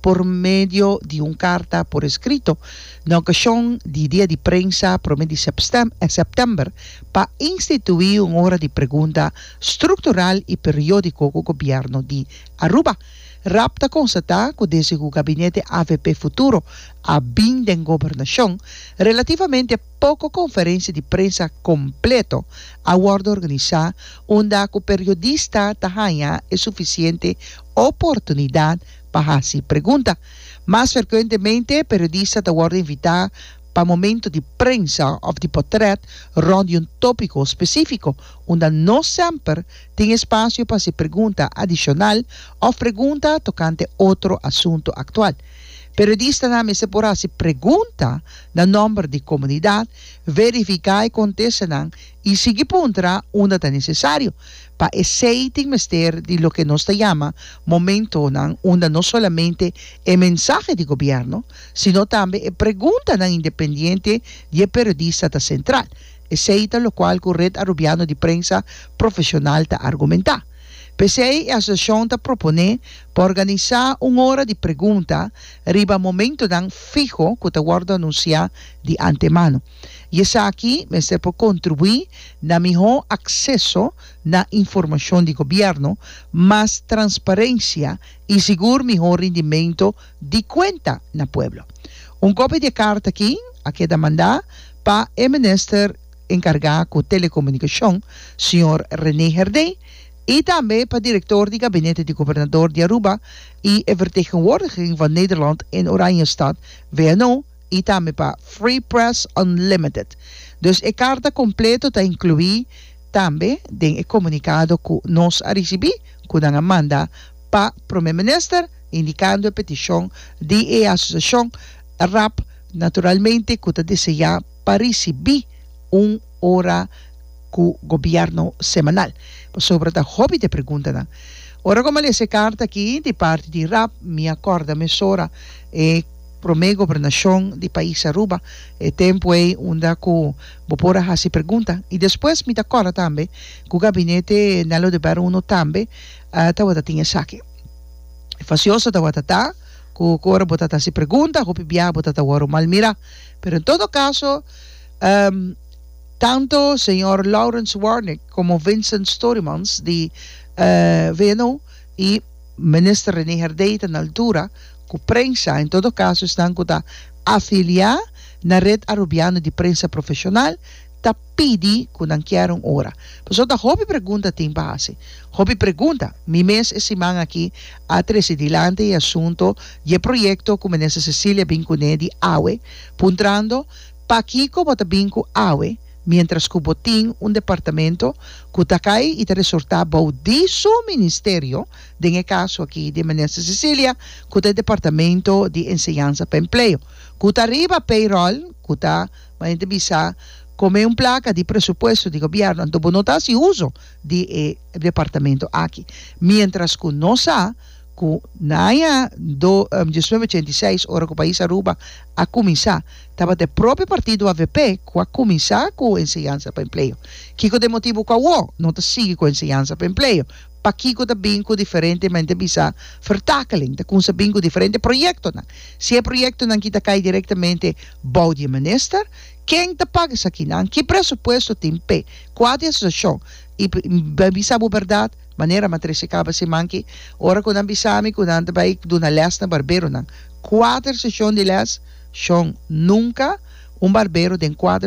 por medio di un karta por eskrito na okashon di dia di prensa promé di sèptèmber pa instituí un ora di pregunta struktural i periódiko ku gobièrnu di Aruba. Raab ta konstatá ku desde ku gabinete avp Futuro a bin den gobernashon, relativamente poko konferensia di prensa kompleto a wòrdu organisá unda ku periodista ta haña e sufisiente oportunidat pa hasi pregunta. Mas ferkuentemente, periodista ta wòrdu invitá pa momento di prensa òf di potrèt rònt di un tópiko spesífiko, unda no semper tin espasio pa hasi pregunta adishonal òf pregunta tokante otro asuntu aktual. Periodistanan mester por hasi pregunta na nòmber di komunidat, verifiká e kontestanan i sigui puntra unda ta nesesario, pa esei tin mester di loke nos ta yama momentonan unda no solamente e mensahe di gobièrnu, sino tambe e preguntanan independiente di e periodista ta sentral. Esei ta lokual ku Red Arubiano di Prensa Profeshonal ta argumentá. P'esei e asosiashon ta proponé pa organisá un ora di pregunta riba momentonan fiho ku ta wòrdu anunsiá di antemano. i esaki mester por kontribuí na mihó akseso na informashon di gobièrnu, mas transparensia i sigur mihó rindimentu di kuenta na pueblo. Un kopia di e karta aki a keda mandá pa e minister enkargá ku Telekomunikashon, señor René Herdé, i tambe pa direktor di gabinete di gobernador di Aruba i e vertegenwoordiging van Nederland in Oranjestad, VNO, i tambe pa Free Press Unlimited. Dus e karta kompleto ta inkluí tambe den e komunikado ku nos a risibí ku nan a manda pa Prome Minister indikando e petishon di e asosiashon rap naturalmente ku ta deseá pa risibí un ora ku gobièrnu semanal pasobra ta hopi di e preguntanan. Ora ku mi a lesa e karta aki di parti di rap mi a kòrda mesora e. Promé gobernashon di pais Aruba, e tempu ei unda ku bo por a hasi pregunta. I despues mi ta kòrda tambe ku gabinete Nello de Barro Uno tambe tabata tin esaki. Fasioso tabata ta ku ora bo ta ta hasi pregunta hopi biaha bo ta ta wòru malmirá. Pero en todo kaso, tantu señor Laurens Warnek komo Vincent Storymans di VNO i Minister René Herdey ta na altura. ku prensa, en todo kaso esnan ku ta afiliá na Red Arubiano di Prensa Profeshonal, ta pidi ku nan kier un ora. Pasobra ta hopi pregunta tin pa hasi. Hopi pregunta. Mi mes e siman aki a trese dilanti e asunto di e proyekto ku Minister Cecilia bin kuné di awe, puntrando, Pakiko bo ta bin ku awe miéntras ku bo tin un departamento ku ta kai i ta resortá bou di su ministerio? den e kaso aki di Minister Cecilia ku ta Departamento di Enseñansa pa Empleo, ku ta riba payroll, ku ta manera di bisa kome un plaka di presupuesto di Gobièrnu. Anto bo no ta hasi uso di e departamento aki miéntras ku nos sa ku na aña do diecinueve ochenta i seis ora ku Pais Aruba a kuminsá tabata e propio partido avp ku a kuminsá ku Enseñansa pa Empleo. Kiko ta e motibu ku awor no ta sigui ku Enseñansa pa Empleo? Pakiko ta bin ku diferentemente bisa vertakeling? Ta kumsa bin ku diferente proyektonan. Si e proyektonan ki ta kai direktamente bou di e minister, ken ta paga esakinan? Ki presupuesto tin p'e kua di asosiashon? I bai bisa bo bèrdat, manera Matrese kaba siman ki, ora ku nan bisa mi ku nan ta bai duna lès na barberonan, kuater seshon di lès shon. Nunka un barbero den kuater.